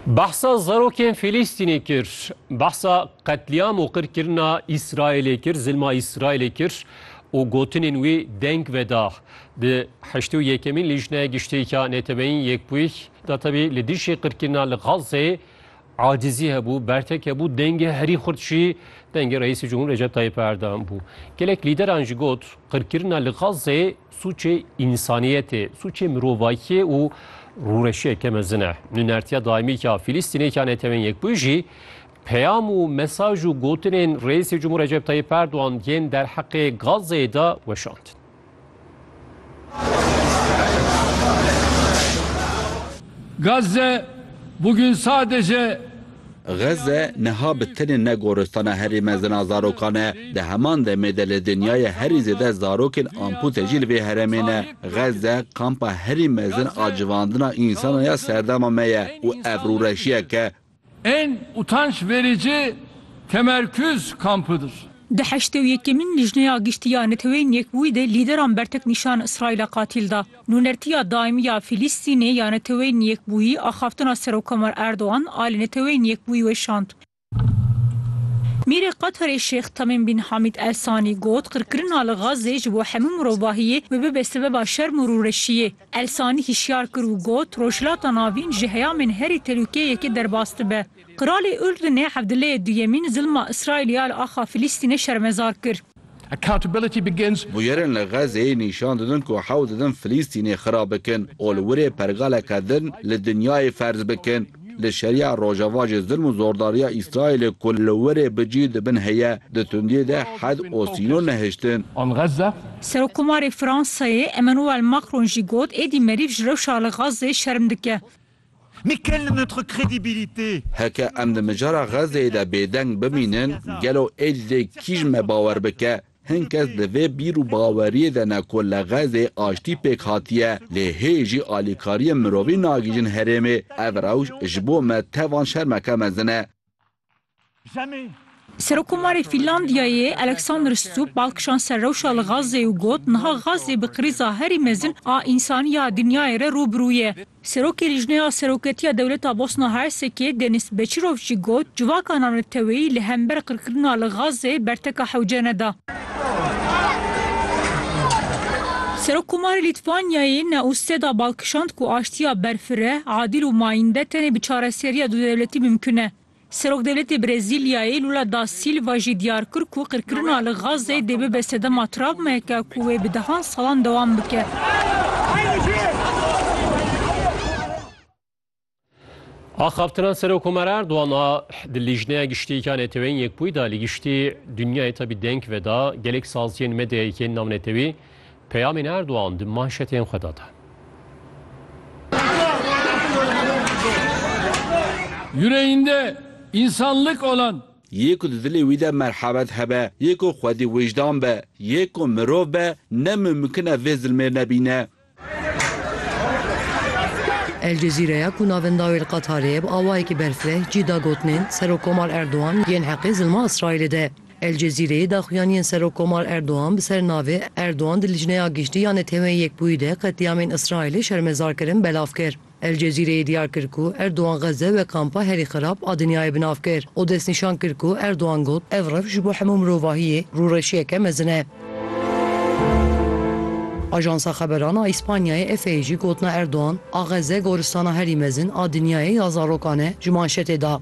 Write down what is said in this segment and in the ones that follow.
Behsa zarokên Fîlîstînê kir, behsa qetlîam û qirkirina Îsraîlê kir, zilma Îsraîlê kir û gotinên wî deng veda. Di heştê û yekemîn Lîjneya Giştîka Neteweyîn Yekbûyî de tevî li dijî qirkirina li Gazeyê acizî hebû, bertek hebû, dengê herî xurt jî dengê Reîsê Cumhur Recep Tayyîp Erdogan bû. Gelek lîderan jî got qirkirina li Gazeyê Sûcê însaniyetê, sûcê mirovakiyê û rûreşiyeke mezin e. Nûnertiya daîmîka Fîlîstînêka Netewên Yekbûyî jî peyam û mesaj û gotinên Reîsê Cumhur Recep Tayyip Erdogan yên derheqê Gazeyê de weşand. Gazze bugün sadece Xezze niha bi tenê ne goristana herî mezin a zarokan e, di heman demê de li dinyayê herî zêde zarokên ampûte jî li vê heremê ne. Xezze kampa herî mezin a civandina însanan ya serdema me ye û ev rûreşiyek e. En utanç verici temerküz kampıdır. Di heştê û yekemîn Lijneya Giştî ya Neteweyên Yekbûyî de lîderan bertek nîşan Îsraîla qatîl da. Nûnertiya daîmî ya Fîlîstînê ya Neteweyên Yekbûyî axaftina Serokkomar Erdogan a li Neteweyên Yekbûyî weşand. Mîrê Qeterê Şêx Tamîm Bin Hamîd El Sanî got, Qirkirina li Xazzê ji bo hemû mirovahiyê bi bibe sebeba şerm û rûreşiyê. El Sanî hişyar kir û got, Rojhilata Navîn ji heyamên herî telûkeyekê derbas dibe. Qiralê Urdunê Evdileyê Duyemîn zilma Îsraîlê ya li axa Fîlîstînê şermezar kir. Bûyerên li Xezeyê nîşan didin ku hewl didin Filîstînê xira bikin û li wirê pergaleke din li dinyayê ferz bikin. Li şerîya Rojava jî zilm û zordariya Îsraîlê ku li wirê bi cî di bin heye, di tundiyê de hed û sînor nehiştin. Serokkomarê Fransayê Emmanuel Macron jî got, Êdî merîv ji rewşa li Xezê şerm dike. Mais quelle est notre crédibilité? Heke em di mijara Xezzeyê de bêdeng bimînin, gelo ê li dê kî ji me bawer bike? Hin kes di vê bîr û baweriyê de ne ku li Xezzeyê aştî pêk hatiye, lê hê jî alîkariyên mirovî nagihîjin herêmê. Ev rewş ji bo me tevan şermeke mezin e. Serokkomarê Fînlandiyayê Alexander Stubb bal kişand ser rewşa li Gazeyê û got, Niha Gazze bi krîza herî mezin a însanî ya dinyayê re rû bi rû ye. Serokê Lîjneya Seroketiya Dewleta Bosna Hersekê Denis Beçirov jî got, Civaka navneteweyî li hember qirkirina li Gazze berteka hewce neda. Serokkomarê Lîtwanyayê Neuseda bal kişand ku aştiya berfireh, adîl û mayînde tenê bi çareseriya dudewletî mimkun e. Serokdewletê Brezîlyayê Lula da Sîlva jî diyar kir ku qirkirina li Gazeyê dê bibe sedema travmayeke ku wê bi dehan salan dewam bike. Axaftina Serokomar Erdogan a di Lîjneya Giştî ya Neteweyên Yekbûyî de li giştî dinyayê tevî deng veda, gelek saziyên medyayê yên navnetewî peyamên Erdogan di manşetên xwe de da. Yüreğinde insanlık olan. Yê ku di dilê wî de merhemet hebe, yê ku xwedî wijdan be, yê ku mirov be, ne mumkin e vê zilmê nebîne. El Cezîreya ku navenda wê li Qatarê ye bi awayekî berfireh cî da gotinên Serokkomar Erdogan yên heqê zilma Îsraîlê de. El Cezîreyê daxuyaniyên Serokkomar Erdogan bi ser navê Erdogan di Licneya Giştî ya Neteweyên Yekbûyî de qetlîamên Îsraîlê şermezar kirin belav kir. El Cezîreyê diyar kir ku Erdogan Xezze wek kampa herî xerab a dinyayê bi nav kir û destnîşan kir ku Erdogan got, Ev rev ji bo hemû mirovahiyê rûreşiyeke mezin e. Ajansa xeberan a Îspanyayê EFE'yê jî gotina Erdogan a Xezze goristana herî mezin a dinyayê ya zarokan e ji manşetê da.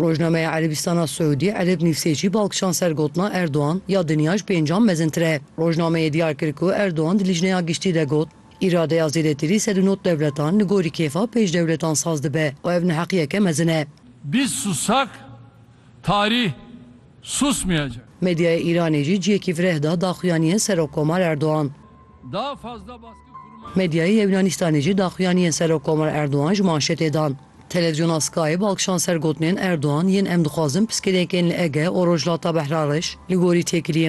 Rojnameya Erebîstana Siûdî, Ereb Nîvsêcî bal kişand ser gotina Erdogan, ya dinya ji pêncan mezintir e. Rojnameyê diyar kir ku Erdogan di Lijneya Giştî de got, Îradeya zêdetirî ser di nod dewletan li gorî kêfa pêş dewletan saz dibe û ev neheqiyeke mezin e. Biz susak, tarih susmayacak. Medyaya Îranê jî cihekî vireh da daxuyaniyên Serokkomar Erdogan. Medyaya Yewnaanistanê jî daxuyaniyên Serokkomar Erdogan ji manşetê dan. Televîzyona Sky bi alkişan ser gotinên Erdogan yên em dixwazin piskirêkên li Ege û Rojhilata Behrariş li gorî têkiliyên